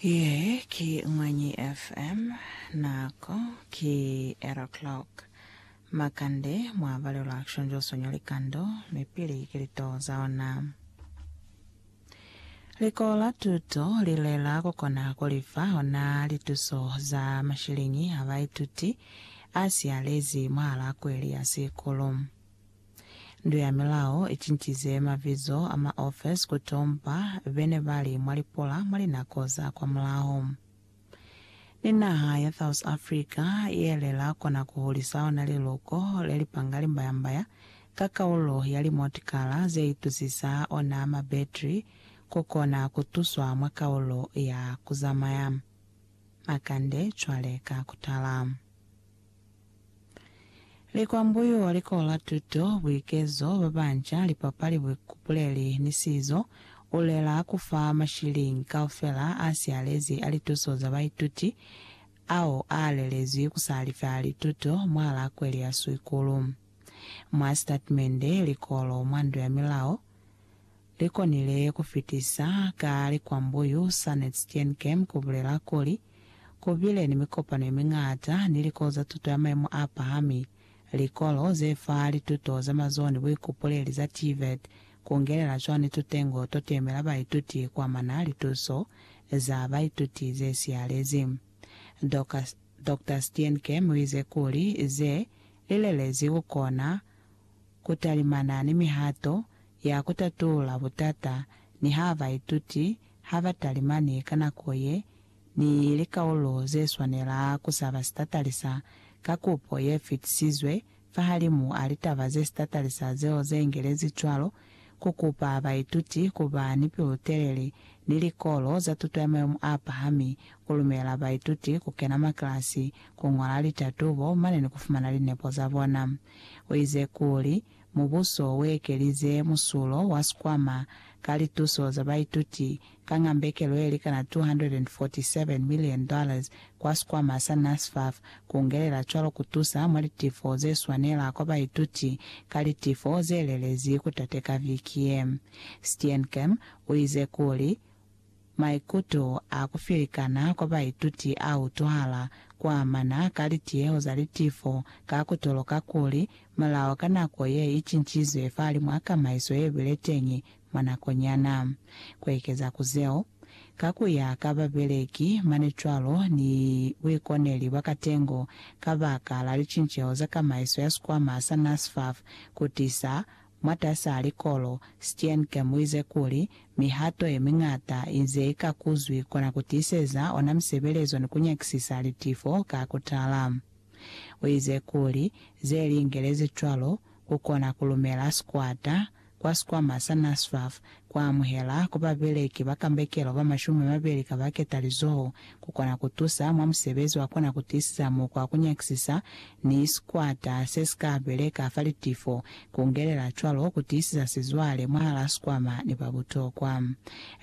Ye ki Mwanyi FM. Nako ki 8 o'clock. Makande mwa balelwa Action Joso ño likando, mi pili ki litoo za ona. Likolo la tuto li lela ku kona ku lifa ona lituso za mashiliñi a baituti a si alezi mwahal'a kweli ya sikulu. Ndu ya Milao i cincize mabizo a ma ofes ku tompa be ne ba li mwa lipola mwa linako za kwamulaho. Ni naha ya South Africa ye le la kona ku hulisa ona liluko le li panga limbayambaya ka kaulo ya limotokara ze itusisa ona mabetri ku kona ku tuswa mwa kaulo ya ku zamaya makande cwale ka ku tala. Likwambuyu, likola, tuto, buikezo, babanca, lipapali, buikupuleli, ni sizo, u lela ku fa mashiliñi kaufela a sialezi a lituso za baituti ao a lelezwi ku sa lifa lituto mwahal'a kweli ya Swikulu. Mwa sitatimende, likolo mwa Ndu ya Milao li konile ku fitisa ka likwambuyu sa Netsteenkem ku bulela kuli, Ku bile ni mikopano ye miñata ni likolo za tuto ya maimo a pahami, likolo ze fa lituto za mazoho ni buikupuleli za TVET, ku ngelela cwani tutengo to temela baituti ku amana lituso za baituti ze siyalezi. Doc. Dokta Steenkem u ize kuli ze li lelezi ku kona ku talimana ni mihato ya ku tatula butata niha baituti ha ba talimani ka nako ye ni likaulo ze swanela ku saba sitatalisa ka kupo ye fitisizwe fahalimu a litaba ze sitatalisa zeo ze ingelezi cwalo, ku kupa baituti ku ba ni pilu-telele ni likolo za tuto ya mayemo a pahami, ku lumela baituti ku kena makilasi, ku ñola litatubo mane ni ku fumana linepo za bona. U ize kuli, Mubuso uekelize musulo wa sikwama ka lituso za baituti ka ngambekelo yelikana $247 million kwa sikwama sa NSFAF, kungelela cwalo kutusa mwa litifo zeswanela kwa baituti ka litifo zelelezi kutateka viki ye. Steenkamp uize kuli, Maikuto a ku filikana kwa baituti a utwahala ku amana ka litiyeho za litifo ka ku toloka kuli mulao ka nako ye i cincizwe fahalimw'a kamaiso ye bile teñi mwa nakonyana. Ku ekeza ku zeo, ka ku ya ka babeleki mane cwalo ni buikoneli bwa katengo kabakala licinceho za kamaiso ya sikwama sa NSFAF ku tisa mwatas'a likolo, Steenke muize kuli, Mihato yemiñata inze ika kuzwi kona kutiiseza ona misebelezo ni kunyakisisa litifo ka kutala. Uize kuli, Zeliingelezi cwalo, kukona kulumela sikwata kwa sikwama sa NSFAF ku amuhela ku babeleki ba kambekelo ba mashumi mabeli ka ba ketalizoho, ku kona ku tusa mwa musebezi wa kona ku tiisisa mukwa wa ku nyakisisa ni sikwata se si ka beleka fa litifo, ku ngelela cwalo ku tiisisa sizwale mwahal'a sikwama ni ba butokwa.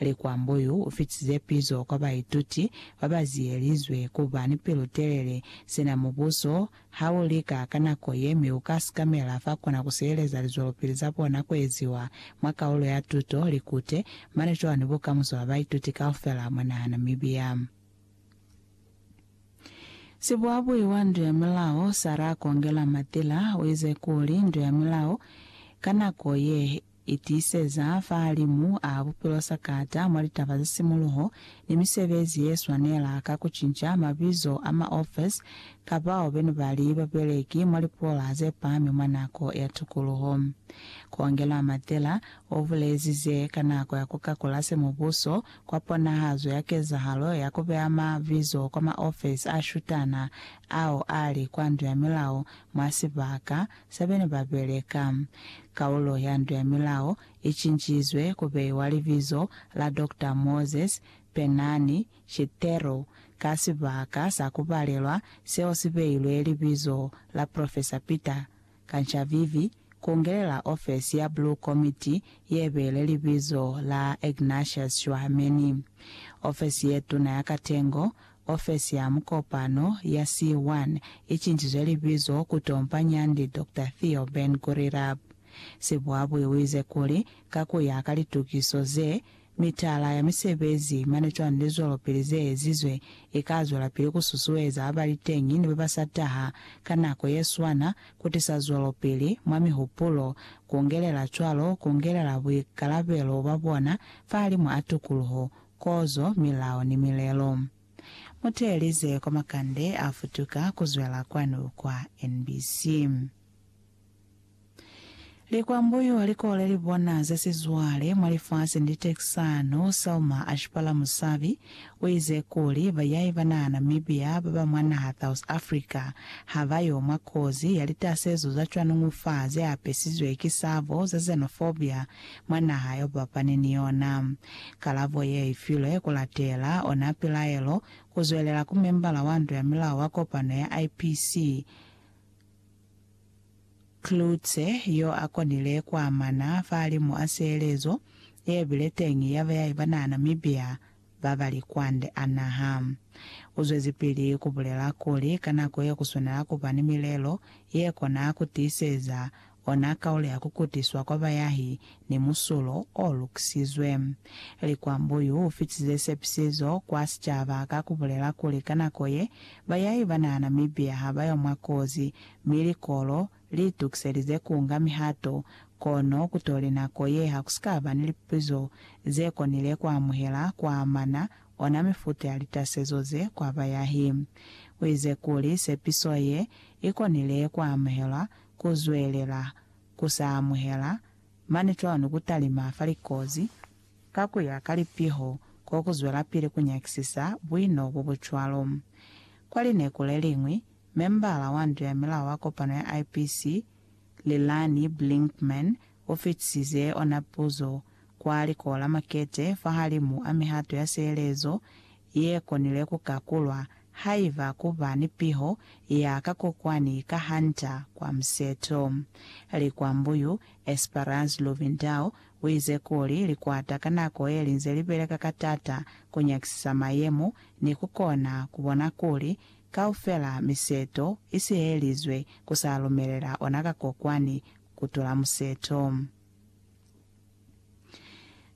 Likwambo yu u fitize pizo kwa baituti ba ba ziyelizwe ku ba ni pilu-telele sina Mubuso Ha u lika ka nako ye mi u ka sikamela fa kona ku sieleza lizwelopili za bona ku eziwa mwa kaulo ya tuto Likute, mane cwani bukamuso bwa baituti kaufela mwa naha Namibia? Sibuabui wa Ndu ya Milao, Sarah Kongela Matila, u ize kuli, Ndu ya Milao ka nako ye, Itiseza fahalimu a bupilo sa kata mwa litaba za simuluho ni misebezi ye swanela ka ku cinca mabizo a ma ofesi ka bao be ne ba li babeleki mwa lipola ze pami mwa nako ya tukuluho. Kongela Matela o bulezi ze ka nako ya ku kakula se mubuso kwa ponahazo ya kezahalo ya ku beya ma bizo kwa ma ofesi a shutana ao a li kwa ndu ya milao mwa sibaka sa bena ba beleka. Kaulo ya Nto ya Milao i cincizwe ku beiwa libizo la Doctor Moses Penani Chithero ka sibaka sa ku balelwa seo si beilwe libizo la Professor Peter Kanchavivi ku ngelela ofesi ya Blue Committee ye beile libizo la Ignatius Shwameni. Ofesi ye tuna ya katengo Ofesi ya Mukopano ya C1 i cinjizwe libizo ku Tompa Nyandi Doctor Theo Ben Gurirab. Sibuabui u ize kuli, ka ku ya ka litukiso ze, mitala ya misebezi mane cwani lizwelopili ze ezizwe i ka zwelapili ku susueza ba ba li teñi ni ba ba sa taha ka nako ye swana ku tisa zwelopili mwa mihupulo, ku ngelela cwalo ku ngelela buikalabelo bwa bona fahalimu a tukuluho Kozo, milao ni milelo. Mu teelize kwa makande a futuka ku zwela kwanu kwa NBC. Likwambuyu li kole li bona ze sizwale mwa lifasi ni litekisano. Selma Ashipala Musabi u ize kuli bayai ba naha Namibia ba ba mwa naha South Africa ha ba yo mwa kozi ya litasezo za cwanuñufa ze apesizwe ki sabo za xenophobia mwa naha yo bapane ni yona. Kalabo ye i filwe ku latela ona pilaelo ku zwelela ku membala wa nto ya milao wa kopano ya IPC, Klutse yo a konile ku amana fahalimu a sihelezo ye bile teñi ya beyahi ba naha Namibia, ba bali kwande a naha. U zwezipili ku bulela kuli, Ka nako ye ku swanela ku ba ni milelo ye kona ku tiiseza ona kaulo ya ku kutiswa kwa bayahi ni musulo o lukisizwe. Likwambo yu fitize sepisizo kwa sicaba ka ku bulela kuli ka nako ye, bayahi ba naha Namibia ha ba yo mwa kozi, mi likolo, Li tukiselize ku nga mihato, kono ku tole nako ye ha ku si ka ba ni lipupizo ze konile ku amuhela ku amana ona mifuta ya litasezo ze kwa bayahi. U ize kuli sepiso ye i konile ku amuhelwa, ku zwelela ku sa amuhela mane cwalo ni ku talima fa likozi ka ku ya ka lipiho ko ku zwelapili ku nyakisisa buino bo bu cwalo. Kwa lineku le liñwi, Membala wa nto ya milao wa kopano ya IPC, Lilani Blinkman, o fitisize ona puzo kwa Likolo la Makete fahalimu a mihato ya sielezo ye konile ku kakulwa haiba ku ba ni piho ya ka kokwani ka Hunter kwa museto. Likwambu yu, Esperance Luvindao, u ize kuli likwata ka nako ye li nze li beleka ka tata ku nyakisisa mayemo ni ku kona ku bona kuli Kaufela miseto i sihelizwe ku sa lumelela ona ka kokwani ku tula museto.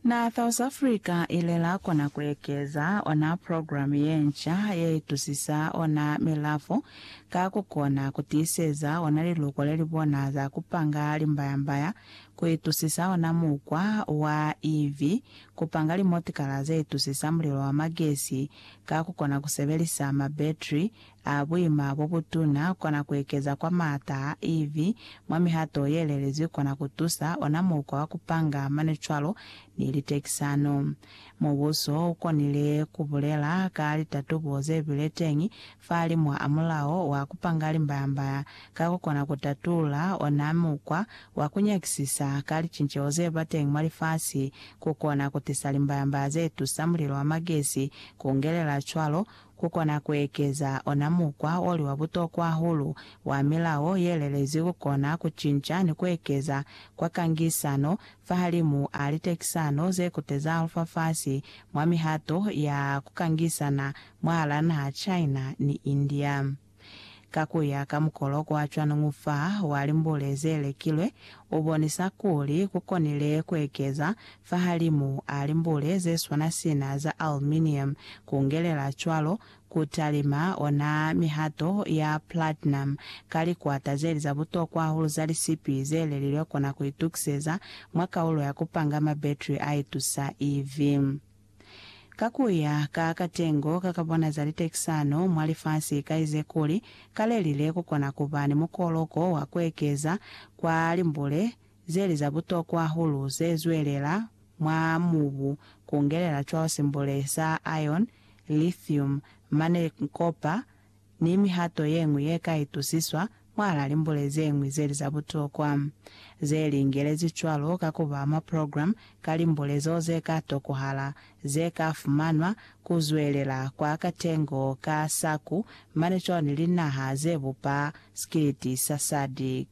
Naa South Africa i lela kona ku ekeza ona program ye nca ye itusisa ona milafo ka ku kona ku tiiseza ona liluko le li bona za ku panga limbayambaya ku itusisa ona mukwa wa iv Ku panga limotikala ze itusisa mulilo wa magesi ka ku kona ku sebelisa mabetri a buima bo butuna kona ku ekeza kwa maata a EV mwa mihato ye lelezwi kona ku tusa ona mukwa wa ku panga mane cwalo ni litekisano. Mubuso u konile ku bulela ka litatubo ze bile teñi Fahalimwa a mulao wa kupanga limbayamba ka kukona kutatula ona mukwa wa kunyakisisa ka licinceho zeba teñi mwa lifasi, kukona kutisa limbayamba zetusa mulilo wa magesi kungelela cwalo kukona kuekeza ona mukwa oli wa butokwa hahulu wa milao yelelezi kukona kucinca ni kuekeza kwa kangisano fahalimu a litekisano zekuteza lufafasi mwa mihato ya kukangisana mwahal'a naha China ni India. Ka ku ya ka mukolo kwa cwaningu fa wa limbule ze lekilwe, u bonisa kuli ku konile ku ekeza fahalimu a limbule ze swana sina za aluminium, ku ngelela cwalo ku talima ona mihato ya platinum ka likwata ze li za butokwa hahulu za lisipi ze lelilwe kona ku itukiseza mwa kaulo ya ku panga ma battery a itusa EV. Ka ku ya ka katengo ka ka bona za litekisano mwa lifasi ka ize kuli ka le lile ku kona ku ba ni mukoloko wa ku ekeza kwa limbule ze li za butokwa hahulu ze zwelela mwa mubu ku ngelela cwalo simbule sa iron, lithium, manekn, kopa, ni mihato ye ñwi ye ka itusiswa mwahal'a limbule ze ñwi ze li za butokwa. Ze li ingelezi cwalo ka ku ba mwa programme ka limbule zeo ze ka tokohala, ze ka fumanwa, ku zwelela kwa katengo ka SACU mane cwalo ni linaha ze bupa Sikiliti sa SADC.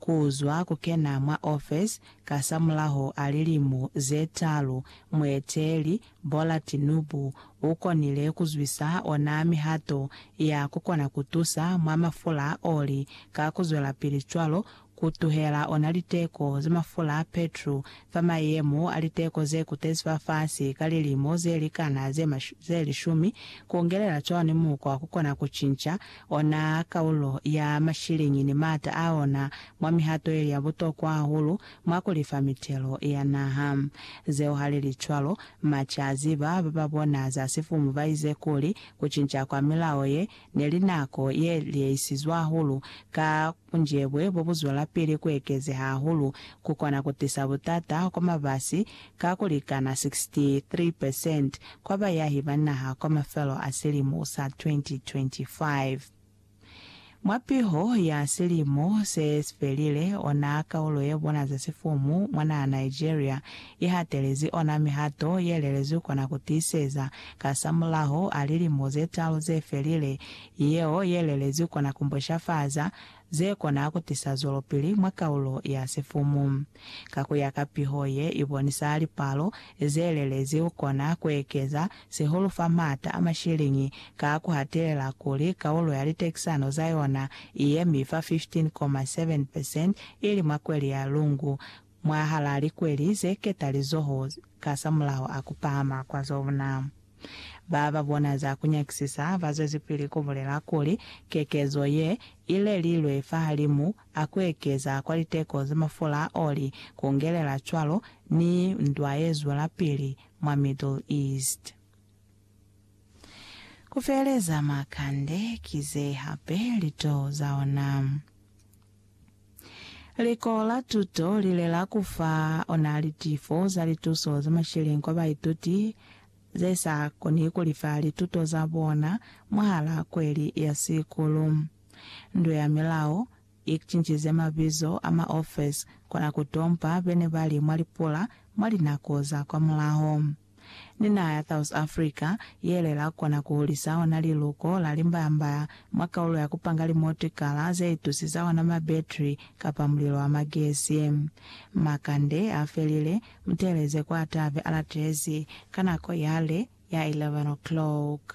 Ku zwa ku kena mwa ofesi kasamulaho a lilimu ze talu, mueteeli Bola Tinubu u konile ku zwisa ona mihato ya ku kona ku tusa mwa mafula a oli ka ku zwelapili cwalo ku tuhela ona liteko za mafula a petru fa mayemo a liteko ze kutezi fa fasi ka lilimo ze likana ze lishumi, ku ngelela cwalo ni mukwa wa ku kona ku cinca Ona kaulo ya mashiliñi ni maata a ona mwa mihato yeli ya butokwa hahulu mwa ku lifa mitelo ya naha. Zeo ha li li cwalo, March a ziba ba ba bona za sifumu ba ize kuli, ku cinca kwa milao ye ne li nako ye liyeisizwe hahulu ka Bunjebwe bo bu zwelapili ku ekezeha hahulu ku kona ku tisa butata kwa mabasi ka ku likana 63 percent kwa bayahi ba naha kwa mafelo a silimo sa 2025. Mwa piho ya silimo se si felile, ona kaulo ye bona za sifumu mwa naha Nigeria i hatelezi ona mihato ye lelezwi kona ku tiiseza kasamulaho a lilimo ze talu ze felile yeo ye lelezwi kona ku mboshafaza ze kona ku tisa zwelopili mwa kaulo ya sifumu. Ka ku ya ka piho ye i bonisa lipalo ze lelezi u kona ku ekeza sihulu fa m'ata a mashiliñi ka ku hatelela kuli kaulo ya litekisano za yona i yemi fa 15.7 percent ili mwa kweli ya Lungu mwahal'a likweli ze ketalizoho kasamulaho a ku pahama kwa zona. Ba ba bona za ku nyakisisa ba zwezipili ku bulela kuli, Kekezo ye i lelilwe fahalimu a ku ekeza kwa liteko za mafula a oli, ku ngelela cwalo ni ndwa ye zwelapili mwa Middle East. Ku feeleza makande ki ze hape lituhu za ona. Liko la tuto lile la ku fa ona litifo za lituso za masheleñi kwa baituti ze sa koni ku lifa lituto za bona mwahal'a kweli ya sikulu. Ndu ya Milao i cincize mabizo a maofesi kona ku tompa be ne ba li mwa lipula mwa linako za kwamulaho. ni naha ya South Africa yele la kona ku hulisa ona liluko la limbaya-mbaya mwa kaulo ya ku panga limotikala ze itusi za ona mabetri kapa mulilo wa magesi. Makande a felile, mu teeleze kwa atabe a latezi ka nako yale ya 11 o'clock.